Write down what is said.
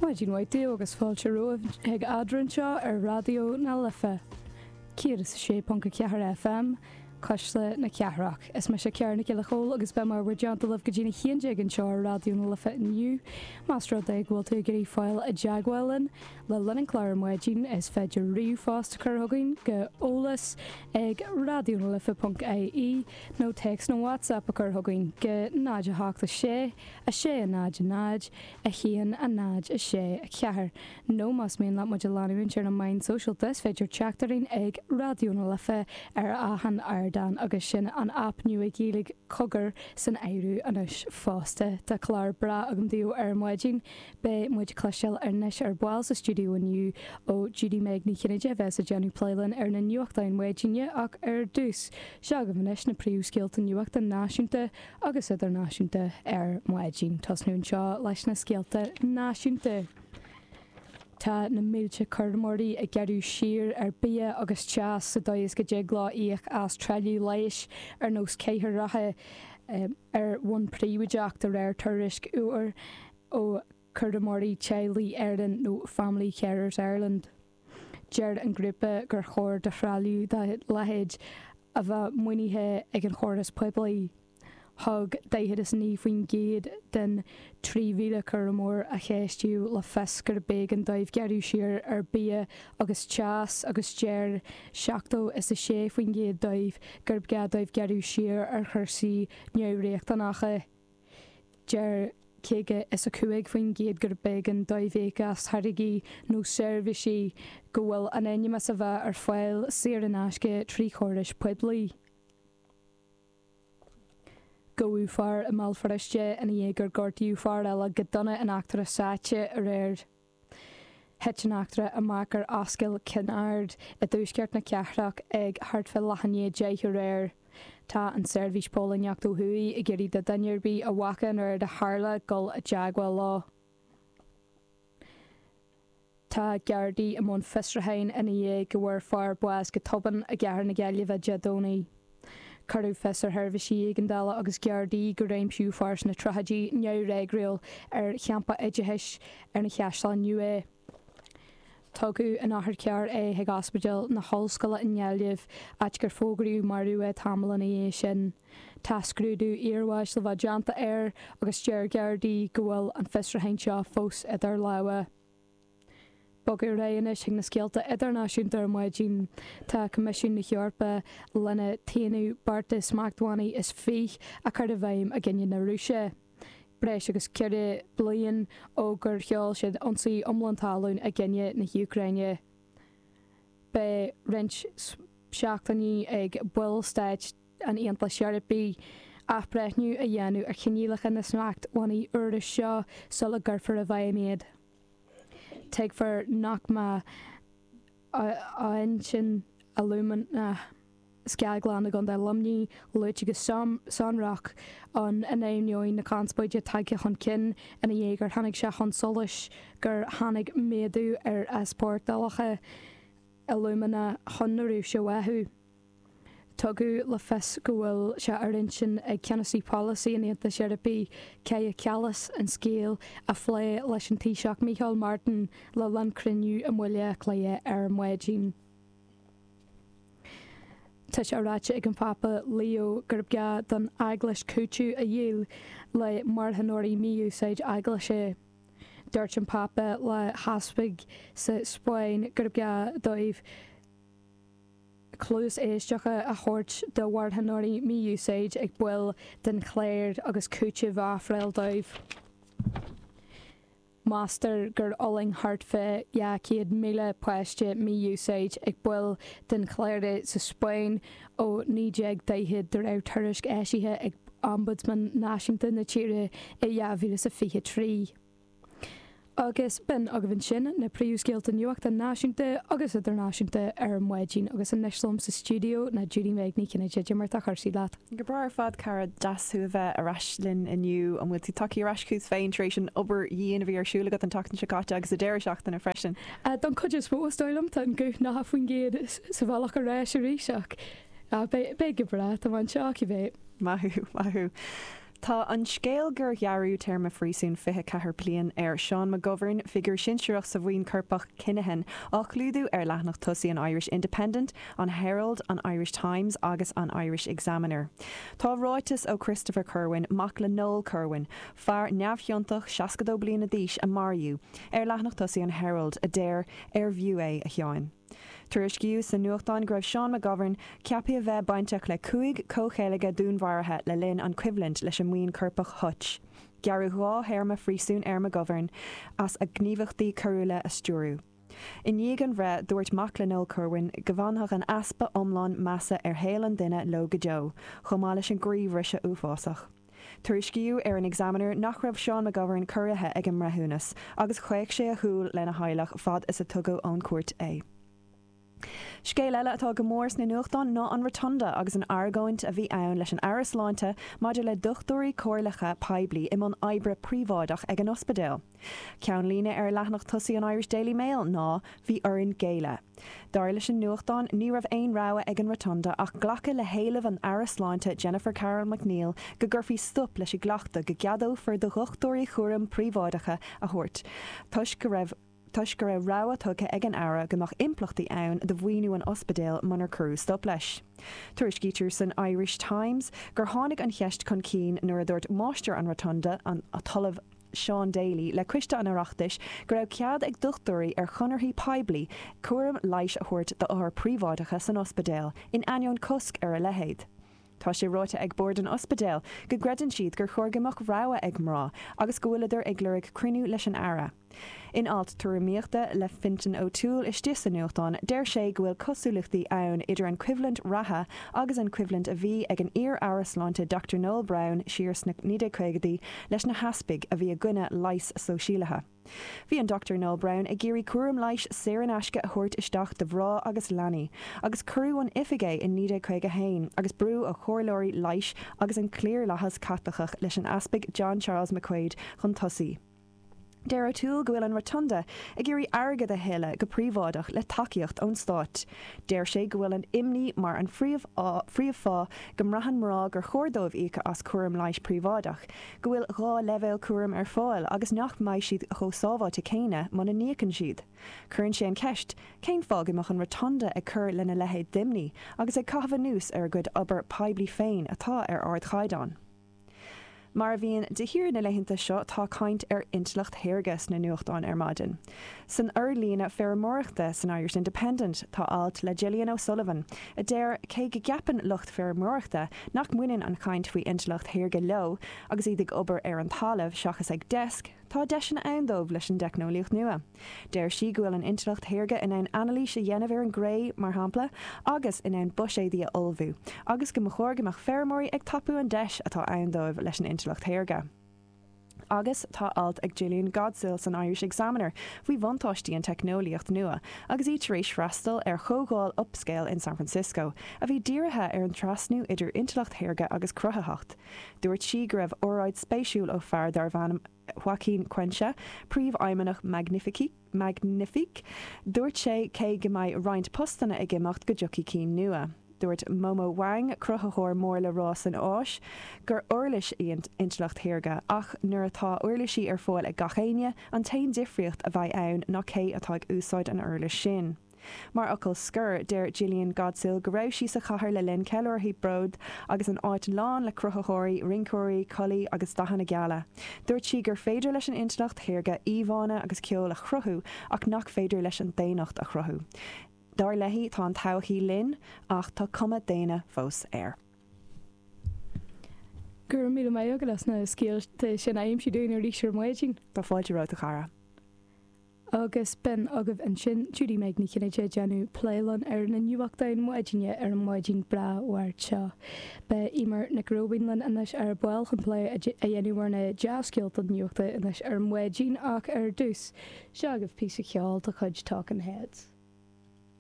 Maidin mhaith daoibh agus fáilte romhaibh ag Eadrainn anseo ar Raidió na Life, 106.4 FM, Cuisle na Cathrach. Is mise Ciarán Mac Giolla Chóill agus beidh mé i bhur dteannta libh go dtí a haon déag anseo ar Raidió na Life inniu. Más rud é go bhfuil tú ag iarraidh fáil i dteagmháil linn le linn an chláir ar maidin, is féidir ríomhphost a chur chugainn go eolas ag raidionalife.ie nó téacs nó WhatsApp a chur chugainn go 086 a sé a náid a náid a haon a náid a sé a ceathair nó más mian leat muid a leanúint ar na meáin shóisialta is féidir teacht orainn ag Raidió na Life ar achan ardán agus sin an aip nua Ghaeilge Cogar san áireamh anois fosta. Tá clár breá agam daoibh ar maidin. Beidh muid ag cloisteáil anois ar ball sa stiúideo inniu ó Judy-Meg Ní Chinnéide a bheas ag déanamh plé linn ar na nuachtáin mhaidine ach ar dtús, seo agaibh anois na príomhscéalta nuachta náisiúnta agus idirnáisiúnta ar maidin. Ag tosnú anseo leis na scéalta náisiúnta. Tá na mílte cúramóirí ag gearradh siar ar bia agus teas sa dóigh is go dtig leo íoc as trealamh leighis ar nós cathaoireacha rotha ar bhonn príobháideach, de réir tuairisc úir ó Chúramóirí Teaghlaigh Éireann nó Family Carers Ireland. Deir an grúpa gur chóir do threalamh dá leithéid a bheith maoinithe ag an chóras poiblí. Thug 49% den 3,000 cúramóir a ceistíodh le fios gur b'éigean dóibh gearradh siar ar bia agus teas agus deir seachtó is a sé faoin gcéad díobh gurb gá dóibh gearradh siar ar chúrsaí neamhriachtanacha. Deir 55% gur b'éigean dóibh íoc as táirgí nó seirbhísí go bhfuil in ainm is a bheith ar fáil saor in aisce tríd an chóras poiblí. Gabhadh fear i mBéal Feirste ina dhiaidh gur gortaíodh fear eile go dona in eachtra sáite aréir. Thit an eachtra amach ar Ascaill Chinn Aird i dtuaisceart na cathrach ag thart fá leath i ndiaidh deich aréir. Tá an tSeirbhís Póilíneacht ó thuaidh ag iarraidh do dhuine ar bith a bhfaca an rud a tharla dul i dteagmháil leo. Tá Gardaí i mbun fiosrúcháin ina dhiaidh go bhfuair fear bás go tobann i gcathair na Gaillimhe Dé Domhnaigh. Cuireadh fios ar sheirbhísí éigeandála agus Gardaí gur aimsíodh fear sna tríochaidí neamhfhreagrúil ar champas oideachais ar an Chaisleán Nua. Tugadh in otharcharr é chuig Ospidéal na hOllscoile i nGaillimh, áit gur fógraíodh marbh é tamall ina dhiaidh sin. Tá scrúdú iarbháis le bheith déanta air agus deir Gardaí go bhfuil an fiosrúchán seo fós idir lámha. Bogadh ar aghaidh anois ag na scéalta idirnáisiúnta ar maidin. Tá Coimisiún na hEorpa lena t-aonú beart de smachtbhannaí is fiche a chur i bhfeidhm i gcoinne na Rúise, breis agus ceithre bliain ó gur sheol siad ionsaí iomlán talún i gcoinne na hÚcráine. Beidh roinnt seachtainí ag ballstáit. an Aontais Eorpaigh athbhreithniú a dhéanamh ar choinníollacha na smachtbhannaí úra seo sula gcuirfear i bhfeidhm iad. Tuigtear nach mbeidh Aughinish Alumina, scaglann i gContae Luimnigh, luaite go sonrach ann, in ainneoin na conspóide tagtha chun cinn i ndiaidh gur tháinig sé chun solais gur tháinig méadú ar easpórtálacha alúmana chun na Rúise uathu. Tugadh le fios go bhfuil sé ar intinn ag Ceannasaí Polasaí an Aontais Eorpaigh, Kaja Kallas, an scéal a phlé leis an Taoiseach Micheál Martin le linn cruinniú i mBaile Átha Cliath ar maidin. Tá sé ráite ag an bPápa Leo gurb gá don Eaglais cúiteamh a dhíol le marthanóirí mí-úsáid eaglaise. Dúirt an Pápa le heaspaig sa Spáinn gurb gá dóibh. cluas éisteacha a thabhairt do mharthanóirí mí-úsáid ag baill den chléir agus cúiteamh a ofráil dóibh. Meastar gur fhulaing thart fá 200,000 páiste mí-úsáid ag baill den chléir sa Spáinn ó 1940 de réir tuairisc eisithe ag Ombudsman Náisiúnta na tíre i 2023. Agus b'in agaibh ansin na príomhscéalta nuachta náisiúnta agus idirnáisiúnta ar an maidin, agus anois liom sa stiúideo ná Judy-Meg Ní Chinnéide, cad é mar atá cúrsaí leat? Go breá ar fad cara, deas thú a bheith ar ais linn inniu. An bhfuil tú tagtha ar ais chugat féin tar éis an obair dhian a bhí ar siúl agat an tseachtain seo caite agus sa deireadh seachtaine freisin? Don chuid is mó is dóigh liom, tá an guth nócha faoin gcéad sa bhealach ar ais arís ach beidh go breá, tá mé anseo cibé. Maith thú, maith thú. Tá an scéal gur gearradh téarma phríosúin 24 bliain ar Seán McGovern, figiúr sinsearach sa bhuíon coirpeach Kinahan, á chlúdú ar leathanach tosaigh an Irish Independent, an Herald, an Irish Times agus an Irish Examiner. Tá ráiteas ó Christopher Kirwan, mac le Noel Kirwan, fear neamhchiontach 62 bliana d'aois a maraíodh, ar leathanach tosaigh an Herald, a deir, 'Arbh fhiú é, a Sheáin? Tuairiscíodh sna nuachtáin go raibh Seán McGovern ceaptha a bheith bainteach le cúig comhcheilge dúnmharaithe le linn an coimhlint leis an mbuíon coirpeach Hutch. Gearradh dhá théarma phríosúin ar McGovern as a ghníomhaíochtaí coiriúla a stiúrú. I ndiaidh an bhreith, dúirt mac le Noel Kirwan go bhfanfadh an easpa iomlán measa ar shaol an duine leo go deo, chomh maith leis an gcroíbhriseadh uafásach. Tuairiscíodh ar an Examiner nach raibh Seán McGovern corraithe ag an mbreithiúnas agus chaoch sé a shúil lena theaghlach fad is a tugadh ón chúirt é. Scéal eile atá go mór sna nuachtáin ná an Rotunda agus an argóint a bhí ann leis an Aire Sláinte maidir le dochtúirí comhairleacha poiblí i mbun oibre príobháideach ag an ospidéal. Ceannlíne ar leathnach tosaigh an Irish Daily Mail ná 'Bhí orainn géilleadh'. Dar leis an nuachtán, ní raibh aon rogha ag an Rotunda ach glacadh le héileamh an Aire Sláinte Jennifer Carroll MacNeill go gcuirfí stop leis an gcleachtadh go gceadófar do dhochtúirí cúraim príobháideacha a thabhairt toisc go raibh rabhadh tugtha ag an Aire go mbeadh impleachtaí ann do mhaoiniú an ospidéil munar cuireadh stop leis. Tuairiscítear san Irish Times gur tháinig an cheist chun cinn nuair a dúirt Máistir an Rotunda, an tOllamh. Seán Daly, le Coiste an Oireachtais go raibh cead ag dochtúirí ar chonarthaí poiblí cúram leighis a thabhairt d'othair príobháideacha san ospidéal, in ainneoin cosc ar a leithéid. Tá sé ráite ag Bord an Ospidéil go gcreideann siad gur chóir go mbeadh rogha ag mná agus go bhfuileadar ag lorg cruinniú leis an Aire. In alt tuairimíochta le Fintan O'Toole istigh sa nuachtán, deir sé go bhfuil cosúlachtaí ann idir an choimhlint reatha agus an choimhlint a bhí ag an iar-aire sláinte Dr Noel Browne siar sna 1950idí leis na heaspaig a bhí i gcoinne leigheas sóisialaithe. Bhí an Dr Noel Browne ag iarraidh cúram leighis saor in aisce a thabhairt isteach do mhná agus leanaí, agus cuireadh ón oifig é in 1951 agus brú ó chomhairleoirí leighis agus an cliarlathas Caitliceach leis an Easpag John Charles McQuaid chun tosaigh. Deir O'Toole go bhfuil an Rotunda ag iarraidh airgead a thuilleadh go príobháideach le tacaíocht ón stát. Deir sé go bhfuil an imní mar an phríomhfháth go mbraitheann mná gur chóir dóibh íoc as cúram leighis príobháideach, go bhfuil dhá leibhéal cúraim ar fáil agus nach mbeidh siad chomh sábháilte céanna muna n-íocann siad. Cuireann sé an cheist, cén fáth go mbeadh an Rotunda ag cur lena leithéid d'imní agus ag caitheamh anuas ar a gcuid obair poiblí féin atá ar ardchaighdeán? Mar a bhíonn de shíor na laethanta seo, tá caint ar intleacht shaorga sna nuachtáin ar maidin. San fhorlíonadh feirmeoireachta san Irish Independent tá alt le Gillian O'Sullivan a deir, cé go gceapann lucht feirmeoireachta nach mbaineann an chaint faoi intleacht shaorga leo agus iad ag obair ar an talamh seachas ag deasc, Tá deiseanna ann dóibh leis an teicneolaíocht nua. Deir sí go bhfuil an intleacht shaorga in ann anailís a dhéanamh ar an gcré, mar shampla, agus in ann buiséadaí a ullmhú, agus go mba chóir go mbeadh feirmeoirí ag tapú an deis atá ann dóibh leis an intleacht shaorga. Agus tá alt ag Jillian Godsil san Irish Examiner faoi bhuntáistí an teicneolaíocht nua agus í tar éis freastal ar chomhdháil Upscale in San Francisco, a bhí dírithe ar an trasnú idir intleacht shaorga agus cruthaitheacht. Dúirt sí go raibh óráid spéisiúil ó fear darbh ainm Joaquin Cuenca, príomhfheidhmeannach Magnifique. Dúirt sé cé go mbeidh roinnt postanna ag imeacht go dtiocfaidh cinn nua. Dúirt Momo Wang, cruthaitheoir mór le rá san Áis, gur uirlis í an intleacht shaorga ach nuair atá uirlisí ar fáil ag gach aoinne, an t-aon difríocht a bheidh ann ná cé atá ag úsáid an uirlis sin. Mar fhocal scoir, deir Jillian Godsil go raibh sí sa chathair le linn ceiliúrtha Bróid agus an áit lán le cruthaitheoirí, rinceoirí, codladh agus dathanna geala. Dúirt sí gur féidir leis an intleacht shaorga íomhánna agus ceol a chruthú ach nach féidir leis an daonnacht a chruthú. Dar léi, tá an todhchaí linn ach tá cuma daonna fós air. Go raibh míle maith agat as na scéalta sin a aimsiú dúinn arís ar maidin. Tá fáilte romhat a chara. Agus b'in agaibh ansin Judy-Meg Ní Chinnéide ag déanamh plé linn ar na nuachtáin maidine ar an mhaidin bhreá Mháirt seo. Beidh Eimear Nic Róibín linn anois ar ball chun plé a dhéanamh ar na dea-scéalta nuachta anois ar maidin ach ar dtús, seo agaibh píosa ceoil de chuid Talking Heads.